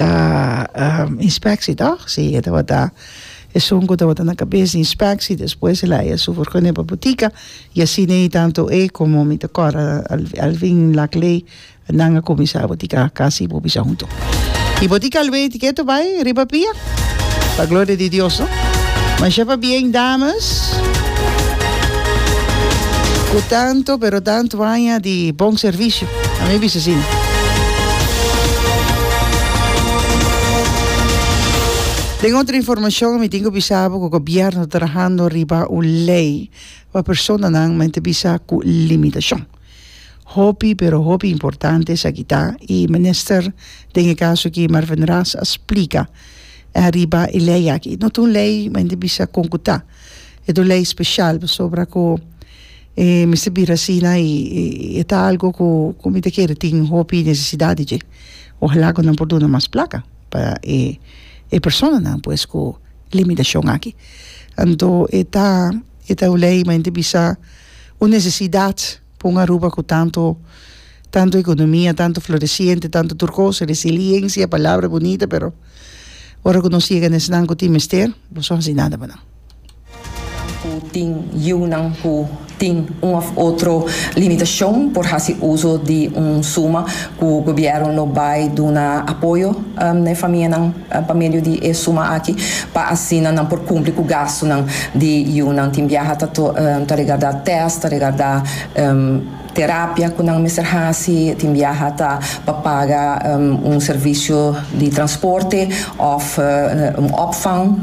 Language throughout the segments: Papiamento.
ta um inspectie toch si e tabata esun cu tabata na cabes di inspectie despues el a haya su vergonia pa butica y asi nei tanto e como mi ta cora Alvin Laclay nan a cuminsa butica casi bo bisa hunto y butica lo bay tiketo bay riba pia pa gloria di Dios no masha pa bien dames cu tanto pero tanto aña di bon servicio A mi bisa asina. Den otro informacion mi tin cu bisa bo cu gobierno ta trahando riba un ley pa personanan mente bisa cu limitacion. Hopi pero hopi importante esaki ta y minister den e caso aki Mervyn Raas a splica riba e ley aki. No ta un ley mente bisa con cu ta. E ta un ley special pasobra cu. E mester bira asina i e ta algo ku ku mi ta kere tin hopi nesesidat dje ojalá ku nan por duna mas plaka pa e e personanan pues ku limitashon aki anto e ta e ta un lei men ta bisa un nesesidat pa un Aruba ku tantu tantu ekonomia tantu floresiente tantu tur kos resiliencia palabra bunita pero ora ku nos yega na esnan ku tin mester boso hasi nada pa nan. Ku tin yiunan ku tin un òf otro limitashon por hasi uso di un suma ku gobièrnu lo bai duna apoyo na e famianan pa medio di e suma aki pa asina nan por kumpli ku gastunan di yiunan. Tin biaha ta regardá tèst, ta regardá. Terapia cu nan mester haci tin biaha ta pa paga un servicio di transporte of un opvang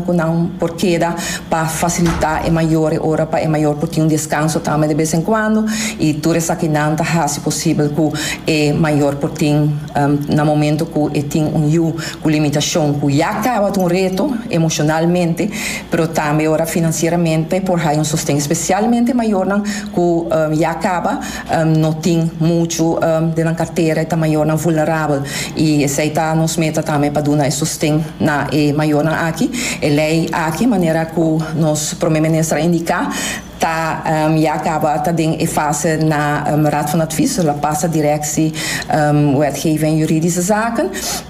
cu nan por keda pa facilita e mayornan ora pa e mayor por tin un descanso tambe de bes en cuando y tur esakinan ta haci posibel cu e mayor por tin na momento cu e tin un yu cu limitacion cu ya caba ta un reto emocionalmente pero tambe ora financieramente por hay un sosten especialmente mayornan. cu ya caba, no tin muchu den nan cartera, e ta mayornan vulnerabel y esey ta nos meta tambe pa duna e sosten na e mayornan aki. E ley aki, manera cu nos Prome Minister a indica, ta ya caba ta den e fase na Raad van Advies, lo a pasa Directie Wetgeving en Juridische Zaken.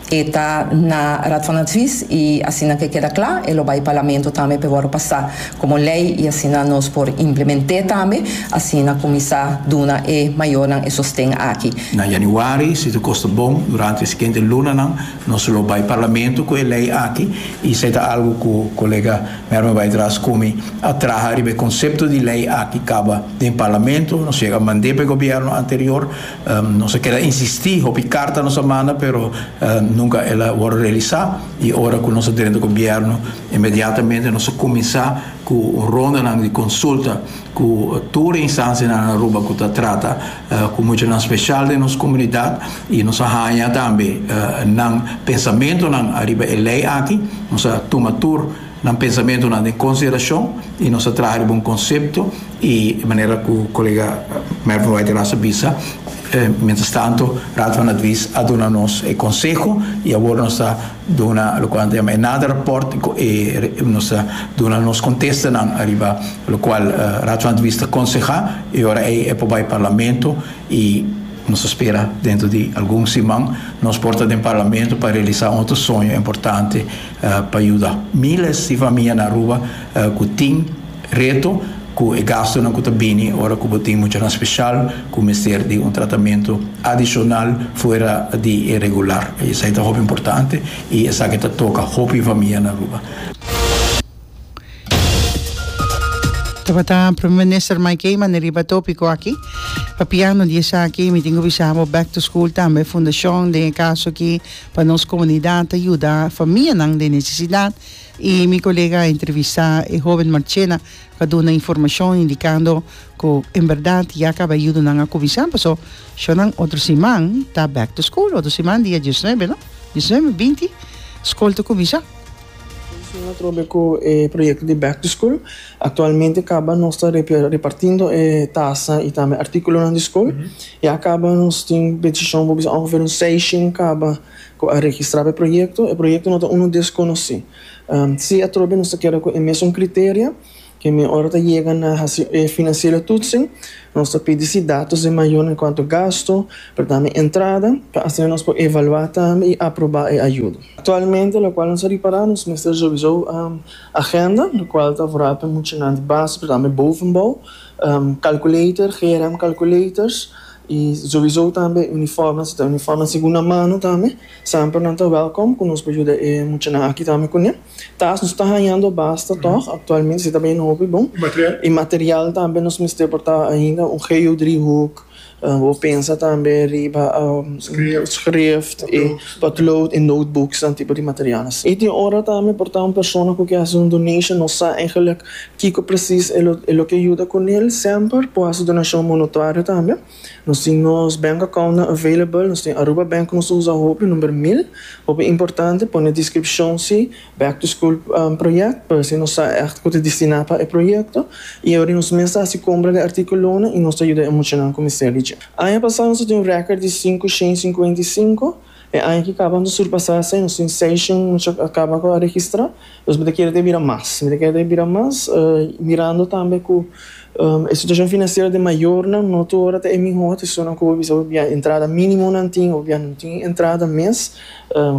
E ta na Raad van Advies y asina ke keda kla e lo bay Parlamento tambe p'e worde pasa como ley y asina nos por implement'é tambe asina cuminsa duna e mayornan e sosten aki. Na Januari, si ta kosta bon, durante e siguiente lunanan nos lo bay Parlamento cu e ley aki y esey ta algo cu Colega Merme bay dra scumi a traha riba e concepto di ley aki caba den Parlamento, nos yega mand'é p'e Gobierno anterior Nos a keda insistí, hopi karta nos a manda pero nunka el a wòrdu realisá i ora ku nos a drenta gobièrnu inmediatamente nos a kuminsá ku rondanan di konsulta ku tur e instansianan na Aruba ku ta trata ku muchanan spesial den nos komunidat i nos a haña tambe nan pensamentunan ariba e lei aki, nos a tuma tur Nan pensamentonan den consideracion y nos a traha riba un concepto y manera cu colega Mervin White a Rasa bisa, mientras tanto Raad van Advies a duna nos e conseho y awor nos ta duna locual nan ta yama e nader rapport y nos ta duna nos contestanan ariba locual Raad van Advies ta conseha y ora ey e por bay Parlamento y nos a spera dentro di algun siman nos por ta den Parlamento pa realiza un otro soño importante pa yuda miles di famia na Aruba ku tin reto ku e gastunan ku ta bini ora ku bo tin muchanan speshal ku mester di un tratamentu adishonal fuera di e regular. Esei ta hopi importante i esaki ta toka hopi famia na Aruba. Tabata Prome Minister Mike Heyman e riba tópiko aki. Papiando di esaki, mi tin ku bisa bo back to school tambe fundashon den e kaso aki pa nos komunidat ta yuda famianan den nesesidat i mi kolega a entrevistá e hóben Marchena ku a duna informashon indikando ku en bèrdat ya kaba e yudonan a kuminsá pasó shònan otro siman ta back to school otro siman dia diesnuebe no diesnuebe binti skol ta kuminsá. Esnan a trobe ku e proyekto di Back to School. Aktualmente kaba nos ta repartindo e tasa i tambe artíkulonan di skol. Ya kaba nos tin bendishon for bisa ongeveer un seishen kaba ku a registrá pa e proyekto. E proyekto no ta unu deskonosí. Si a trobe nos ta keda ku e mesun kriteria. Ke mi ora ta yega na hasi e financiero toetsen, nos ta pidi si datos di mayor en cuanto gasto, pero tambe e entrada, pa asina nos por evalua tambe y aproba e ayudo. Actualmente lo cual nos a ripara nos mester revisó agenda, lo cual ta vorá pa e muchanan di base pero tambe bovenbouw, calculator, GRM calculators y revisó tambe e uniforme, si ta uniforme segunda mano tambe, semper nan ta welcome cu nos por yuda e muchanan aki tambe cune. Ta nos ta hañando basta tòg aktualmente si ta bini hopi bon i material tambe nos mester por ta ainda un geodriehoek bo pensa tambe riba schrift i potlood i notebooks nan tipo di material asin i tin ora tambe por ta un persona ku ke hasi un donation no sa eigenlijk kiko presis e lo ke yuda kunel semper por hasi donashon monotuario tambe. Nos tin nos bank accountnan available, nos tin Aruba Bank ku nos ta usa hopi, number mil. Hopi importante pone e descripcion si back to school project pa hasi nos sa echt ku ta destina pa e proyecto y awor nos mes ta hasi compra di articulonan y nos ta yuda e muchanan ku mester di dje. Aña pasa nos a tin un record di cinco shen cincuenta y cinco. E aña ki kaba nos a surpasá esei, nos tin seis shon nos a kaba ku a registrá, dus mi ta kere ta bira mas, mi ta kere ta bira mas, mirando tambe ku e situashon finansiero den mayornan no tur ora ta e mihó, ta esunnan ku bo bisa bo bia entrada mínimo nan tin o bia no tin entrada mes,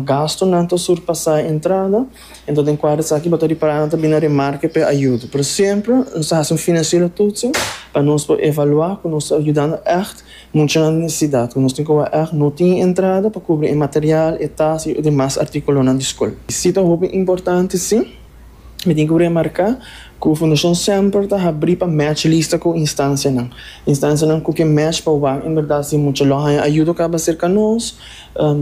gastunan ta surpasá e entrada, enton den kuadro esaki bo ta ripará nan ta bini na remarke p'e ayudo, pero semper nos ta hasi un finansiero tutsin pa nos por evaluá ku nos ta yudando ègt Mucha necesidad cu nos tin cu aeg no tin entrada pa cubri e material, e tasa y demas articulonan di scol. Si ta hopi importante, si. Mi tin cu remarca cu Fundacion semper ta habri pa match lista cu instancianan. Instancianan cu ke match pa wak en berdad si mucha lo haya ayudo caba cerca nos,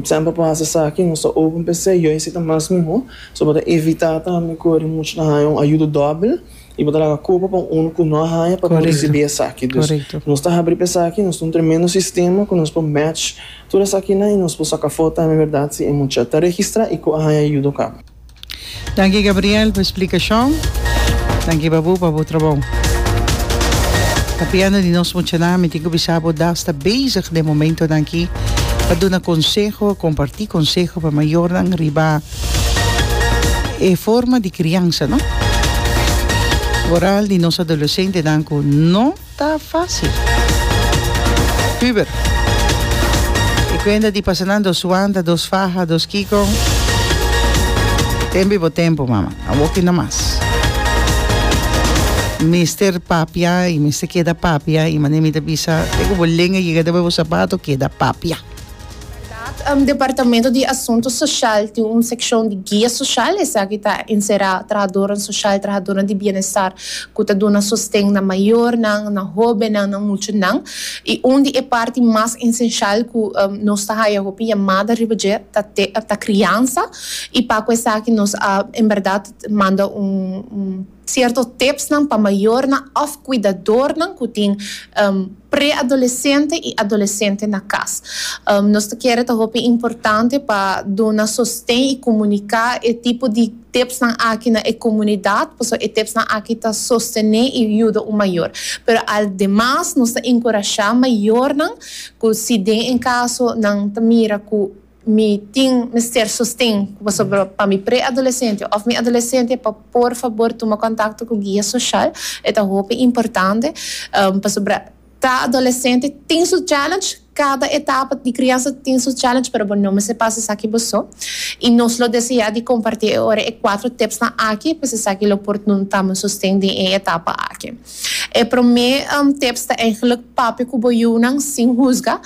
semper por haci esaki, nos ta open pa esey, yo esey ta mas mihor, so bo ta evita tambe cu mucha ta haya un ayudo dobel. I bo ta laga culpa pa un unu cu no a haya pa bo ricibi esaki. Dus, nos ta habri pa esaki, nos ta un tremendo sistema cu nos por match tur esakinan i nos por saca for tambe berdad si e mucha ta registra i cu a haya yuda oca. Danki Gabriel pa explicacion. Danki pa bo pa bo trabou. Capiando di nos muchanan mi tin cu bisa bo da sta bezig den momento danki pa duna conseho, comparti conseho pa mayornan riba. E forma di kriansa no moral di nos adoleshentenan ku no ta fásil. Püber. E kuenta di pasanan dos wanta, dos faha, dos kiko. Tempu i bo tempu, mama. A woki nomas. Mester papia i mester keda papia i manera mi ta bisa te ku bo lenga yega debajo bo sapato keda papia. Bèrdat, Departamento di Asuntu Soshal tin un sekshon di guia soshal, esaki ta enserá trahadónan soshal, trahadónan di bienestar ku ta duna sosten na mayornan, na hóbennan, na muchanan. I un di e parti mas esenshal ku nos ta haya hopi yamada riba dje ta te ta kriansa i pa ku esaki nos a en bèrdat manda un Cierto tipsnan pa mayornan of cuidadornan cu tin pre-adolescente y adolescente na cas. Nos ta kere ta hopi importante pa duna sosten y comunica e tipo di tipsnan aki na e comunidad, pasobra e tipsnan aki ta sostene y yuda un mayor. Pero aldemas nos ta encurasha mayornan cu si den en caso nan ta mira cu. Mi tin mester sosten ku pasobra pa mi pre-adolesente òf mi adolesente pa por fabor tuma kontakto ku guia soshal. E ta hopi importante pasobra ta adolesente tin su challenge, kada etapa di kriansa tin su challenge pero bo no mester pasa esaki bo so. I nos lo deseá di kompartí e ora e kuatro tipsnan aki pues esaki lo por duna tambe un sosten den e etapa aki. E promé tips ta eigenlik papia ku bo yunan sin husga.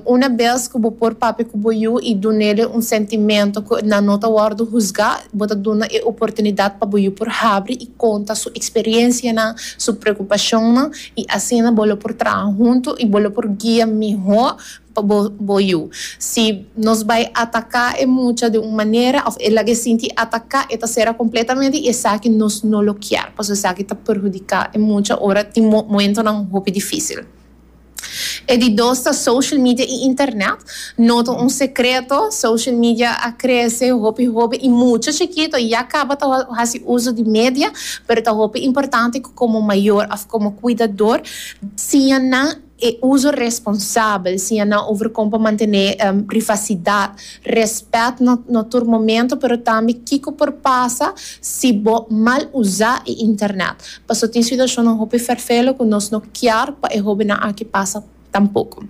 Una bes ku bo por papia ku bo yu i dun'é lei un sentimentu ku nan no ta wòrdu husgá, bo ta dunnan e oportunidat pa bo yu por habri i konta su eksperiensianan, su preokupashonnan i asina bo lo por traha huntu i bo lo por guia mihó. pa bo bo yu. Si nos bai ataka e mucha den un manera of e laga e sinti ataka e ta sera completamente y esaki nos no lo kier paso esaki ta perhudica e mucha ora tin mo momentonan hopi dificil. E di dos ta social media y internet, no ta un secreto social media a crece hopi hopi y mucha chikito ya caba ta haci uzo di media pero ta hopi importante cu como mayor of como cuidador siña nan E uso responsabel, siña nan over kon pa mantené privasidat, rèspèt na na tur momento, pero tambe kiko por pasa si bo mal usá e internet. Paso tin situashonnan hopi ferfelu ku nos no kier pa e hóbennan aki pasa tampoko.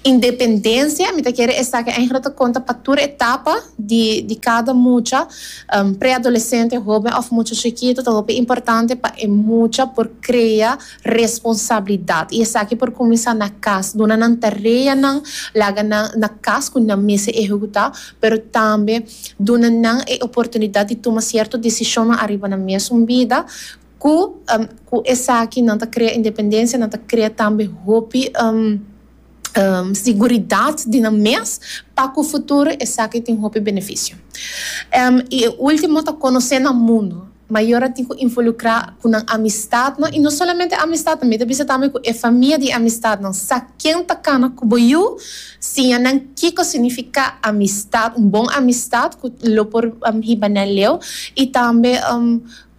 Independensia, mi ta kere esaki eigenlijk ta konta pa tur etapa di di kada mucha, preadolesente, hóben òf mucha chikitu, ta hopi importante pa e mucha por krea. responsabilidad y esaki por cuminsa na cas, duna nan tarea nan, laga nan na cas cu nan mester ehecuta, pero tambe duna nan e oportunidad di tuma cierto decisionnan ariba nan mesun bida, cu cu esaki nan ta crea independencia, nan ta crea tambe hopi. siguridat di nan mes pa ku futuro esaki tin hopi benefisio. I e ultimo ta konosé nan mundu. Mayor a tin ku involukrá ku nan amistadnan, i no solamente amistadnan, mi ta bisa tambe ku e famia di amistadnan. Sa ken ta kana ku bo yu, siña nan kiko signifiká amistat, un bon amistat ku lo por hiba nan leu, i tambe.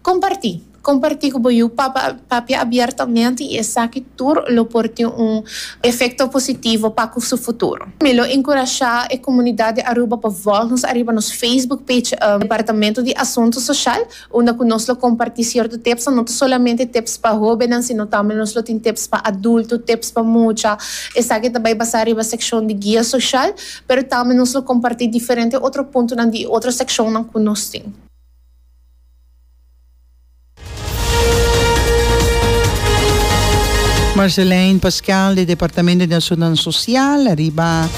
Comparti. Comparti cu bo yu papa papia abiertamente y esaki tur lo por tin un efecto positivo pa cu su futuro. Mi lo encurasha e comunidad di Aruba pa volg nos ariba nos Facebook page Departamento di Asunto Social unda cu nos lo comparti cierto tipsnan, no ta solamente tips pa hobennan sino tambe nos lo tin tips pa adulto, tips pa mucha, esaki ta bay basa riba seccion di Guia Social, pero tambe nos lo comparti diferente otro puntonan di e otro seccionnan cu nos tin. Marceline Pascal di Departamento di Asunnan Social ariba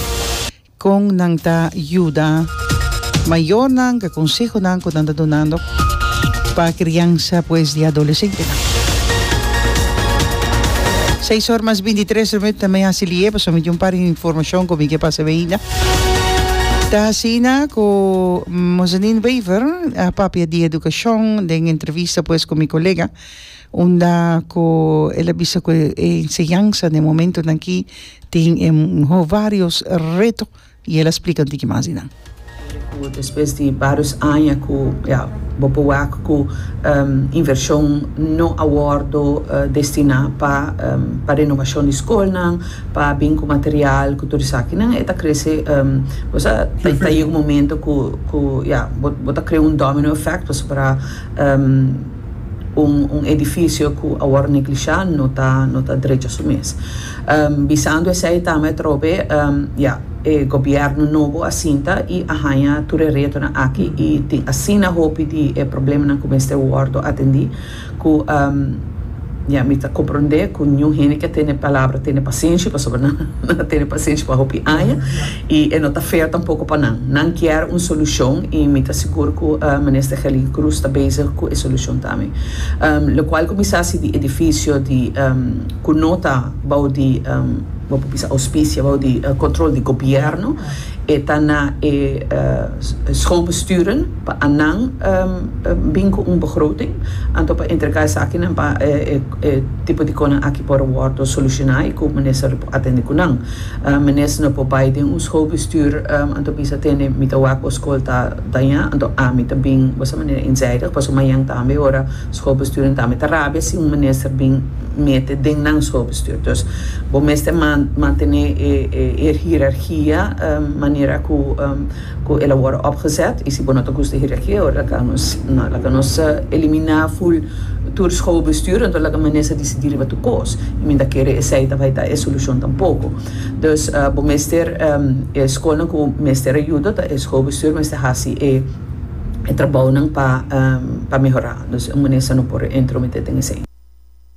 con nan ta yuda mayornan cu e consehonan cu nan ta dunando pa criansa pues di adolesentenan. Seis or mas binti tres minuut ta mi haci liye pasobra mi tin un par di informacion cu mi ke pasa bay. Ta asina ku Mozanin Wever a papia di edukashon den entrevista pues ku mi kolega unda ku el a bisa ku e enseñansa den momentunan aki tin e vários reto i el a splika un tiki mas di nan. Ku despues di vários aña ku ya bo por wak ku invershon no a wòrdu destiná pa renovashon di skolnan, pa bin ku material ku tur esakinan e ta krese bo sa ta ta yega un momento ku ku ya bo bo ta krea un domino effect pasobra un un edificio ku a wòrdu neglishá no ta no ta drecha su mes bisando esei ta mi a trou be ya e gobièrnu nobo a sinta i a haña tur e retonan aki i tin asina hopi di e problemanan ku mester wòrdu atendí. Cu, ya, mi ta compronde cu niun hende ke tene palabra tene pasenshi, pasobra nan a tene pasenshi pa hopi aña, y e no ta fair tampoco pa nan. Nan kier un solucion, y mi ta sigur cu Minister Gelin Cruz ta bezig cu e solucion tambe. Locual cu mi sa si di edificio di cu no ta bou di, bo por bisa, auspicia, bou di control di Gobierno, E ta na e schoolbesturen pa anan bin cu un begroting anto pa entrega esakinan pa e tipo di conan aki por wordo soluciona y cu minister lo por atende cu nan. Minister no por bay den un schoolbestuur anto bisa tene mi ta wak bo school ta daña anto ami ta bin boso manera eenzijdig pasobra mañan tambe ora Schoolbesturen tambe ta rabia si un minister bin mete den nan schoolbestuur. Dus bo mester mantene e hiërarchia manera cu el a worde opgezet. Y si bo no ta gusta e hiërarchia, ora laka nos, no, laka nos elimina full tur schoolbestuur, enton laka minister decidi riba tur cos. Y mi ta kere esey ta bay ta e solucion tampoco. Dus bo mester, e schoolnan cu mester a yuda, ta e schoolbestuur mester haci e. e trabounan pa mehorá. Nos un manera sa no por entrometé den esei.